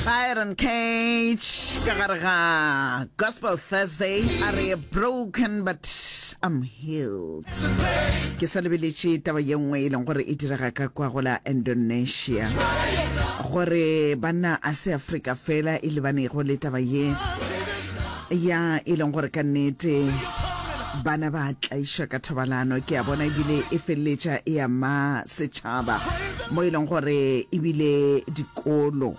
Byron Cage ka gare ga Gospel Thursday a re broken but I'm healed ke sa lebeletše taba ye nngwe e leng gore e direga ka kwa go la Indonesia gore banna a se Afrika fela e lebanego le taba ye ya e leng gore ka nnete bana ba tlaišwa ka thobalano ke a bona ebile e feleletša e ama setšhaba mo e leng gore ebile dikolo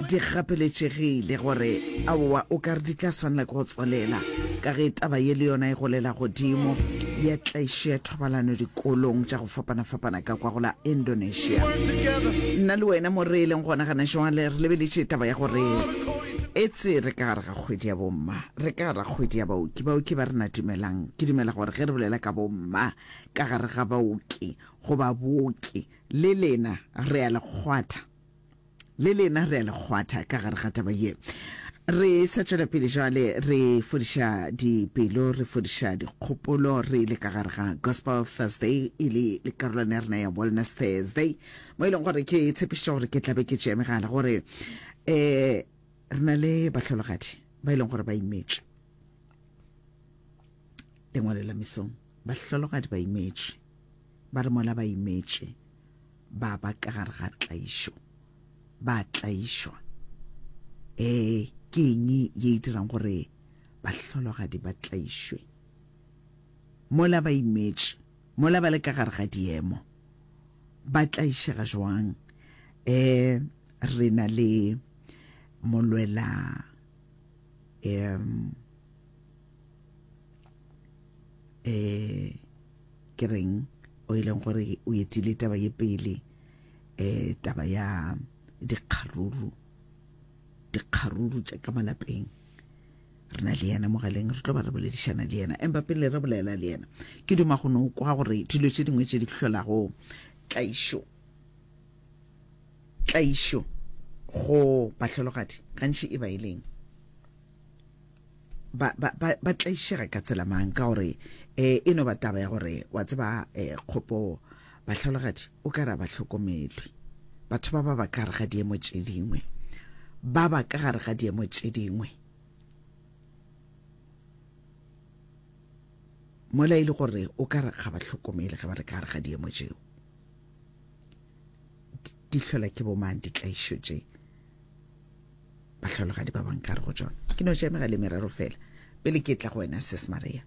di gapeletšegile gore aowa o ka re di tla swanela ke go tswalela ka ge taba ye le yona e golela godimo ya tlaišo ya thobalano dikolong tša go fapana-fapana ka kwa go la Indonesia. Nna le wena mo re leng gona gana jwale re lebeletše taba ya gore etse re ka gare ga kgwedi ya bomma re ka gare ga kgwedi ya baoki baoki ba re na dumelang ke dumela gore ge re bolela ka bomma ka gare ga baoki goba booki le lena re a le kgwatha le lena re a le kgwatha ka gare ga taba ye re sa tšwela pele jale re fodiša dipelo re fodiša dikgopolo re le ka gare ga gospel thursday e le le karolwana ya rena ya wellness thursday mo e leng gore ke tshepišitše gore ke tlabe ke tšeamegala gore um re na le bahlologadi ba e leng gore ba imetšwe lengwalo la mesong bahlologadi ba imetšwe ba re mola ba imetšwe ba ba ka gare ga tlaišo ba tlaišwa um ke eng ye e dirang gore bahlologadi ba tlaišwe mola ba imetše mola ba le ka gare ga diemo ba tlaišega jwang um re na le molwela um um Ke reng o ileng gore o etile taba ye pele eh taba ya dikgaruru dikgaruru tša ka malapeng re na le yena mogaleng re tlo ba re boledišana le yena empa pele re bolela le yena ke duma go no kwa gore dilo tše dingwe tše di hlolago tlaišo tlaišo go bahlologadi gantši e ba e leng ba ba ba ba tlaišega ka tsela mang ka gore eh e no ba taba ya gore wa tseba eh kgopo bahlologadi o ka ra ba hlokomelwe batho ba ba ba ka re ga diemo tše dingwe ba ba ka gare ga diemo tše dingwe mola e le gore o ka re ga ba hlokomele ge ba re ka gare ga diemo tšeo di hlola ke bomang ditlaišo tše bahlologadi ba bang ka re go tšona ke no tšemega le merero fela pele ke tla go wena ses maria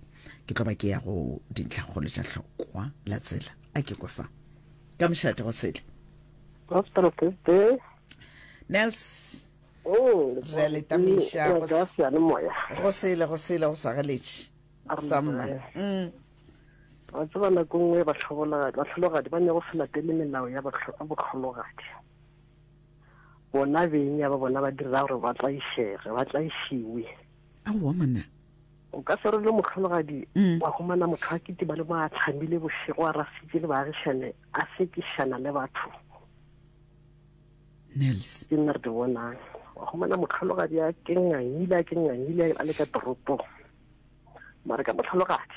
ke tlo ba ke ya go dintlhakgolo tša hlokwa la tsela a ke kwe fa ka mošate go sele nels oh, re letamiša go sele go sele go sagaletše samma mm. wa tseba nako nngwe batlhologadi ba ne go se latele melao ya botlhologadi bona beng ya ba bona ba direla gore ba tlaišege ba tlaišiwe aowa monna o ka se role mohlologadi mm. wa humana motho a kitiba le mo a tlhamile bošego a rasitse le baagišane a sekišana le batho nels ke nna re di bonang wa humana motlhologadi a kengangile a kengangile a le ka toropong mare ka motlhologadi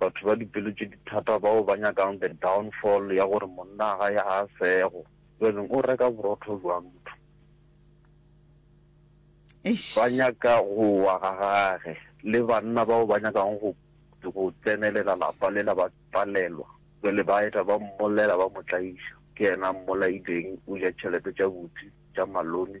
Batho ba dipelo tše di thata bao ba nyakang the downfall ya gore monna ga ya a sego. Jwanong o reka borotho bja motho. Eish. Ba nyaka go wa ga gage. Le banna bao ba nyakang go go tsenelela lapa lela ba palelwa. Jwale ba eta ba mmollela ba mo tlaiša. Ke yena a mmolaileng o ja tšhelete tša buti tša malome.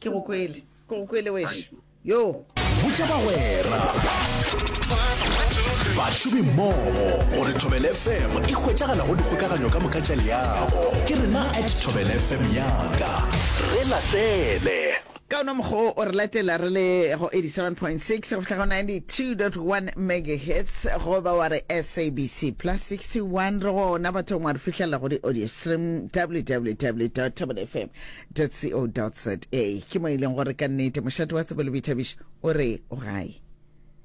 ke go kwele ke go kwele wešo yo botša bagwera bašomi mmogo gore thobel fm e hwetšagala go dikgokaganyo ka moka tša leago ke rena at thobel fm yaka re latele ka ona mokgwa o re latela re le go 87.6 go fitlha go 92.1 megahertz goba wa re sabc plus 61 re gona bathong wa re fitlhelela go di-audio stream www tabelfm co.za ke mo e leng gore ka nnete mošate wa tsebo le boithabišo o re o gae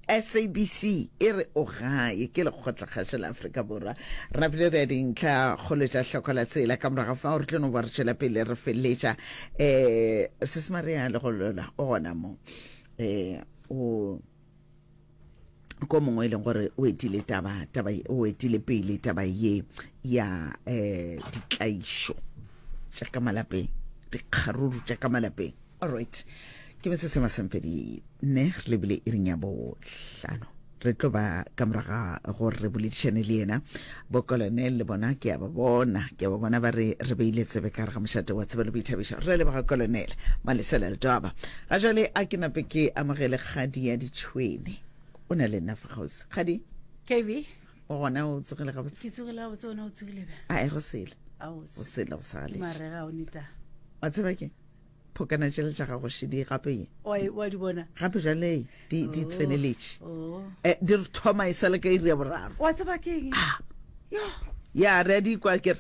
sabc e re o gae ke lekgotlakgašo la aforika borwa rena pele re ya dintlha kgolo tša hloko la tsela ka morago fa gore tlono ba re tšwela pele re feletša um sesemare ya legolola o gona mo um o ko mongwe e leng gore o etile taba taba o etile pele taba ye ya eh ditlaišo tša ka malapeng dikgaruru tša ka malapeng all right ke be se sema sempedi ne re lebile e reng ya bohlano re tlo ba ka moraga gore re boledišane le yena Bokolonel le bona ke a ba bona, ke a ba bona ba re re beile tsebe ka re ga mošate wa tsebe le boithabišo. Re a leboga Kolonel Malesela Letwaba. Ga jwale a ke nape ke amogele kgadi ya ditšhwene. O na le nna fa kgauswi. Kgadi? KV? O gona o tsogile gabotse? Ke tsogile gabotse, ona o tsogile ba? Ae, go sele. Ao. Go sele, go sa galeše. Marega o neta. Wa tseba ke? phokana tšele tša gago šedi gape wa di bona gape jale di di oh. tseneletše oh. eh, di re thoma e sa le ka iri ya boraro wa tseba ke eng ah. ya re di kwa kere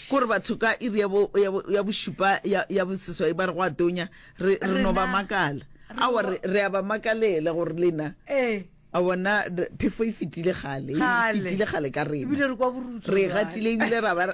kore batho ka iri ya bošupa ya boseswai ba re go a tonya re no ba makala awa re a ba makalela gore lena eh. A bona re- phefo e fetile kgale, e Kgale. fetile kgale ka rena. Ebile re kwa borutso Re e jwale. gatile ebile ra ba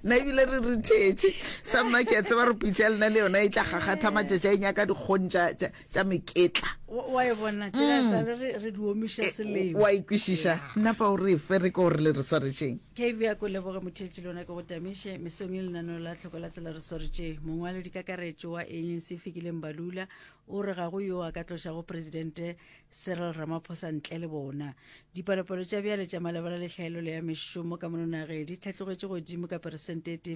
na ebile re re thetše. Sa mma ke a tseba re pitša ya lena le yona e tla gakgatha matšatši a e nyaka dikgong tša- tša tša meketla. Wa wa e bona tsela e sale re re di omiša Eh, selemo wa e ikwešiša nna pa o re fe re ko re le re swaretšeng kv ya ko leboge motheetši le yona ke go tamiše mesong e lenaneo la tlhoko la tsela re swaretše mongwaledi kakaretšo wa eng se fikileng balula O re ga go yo a ka tlošago Presidente Cyril Ramaphosa ntle le bona. Dipalopalo tša bjale tša malebana le tlhaelelo ya mešomo ka mononage di hlatlogetše godimo ka peresente e tee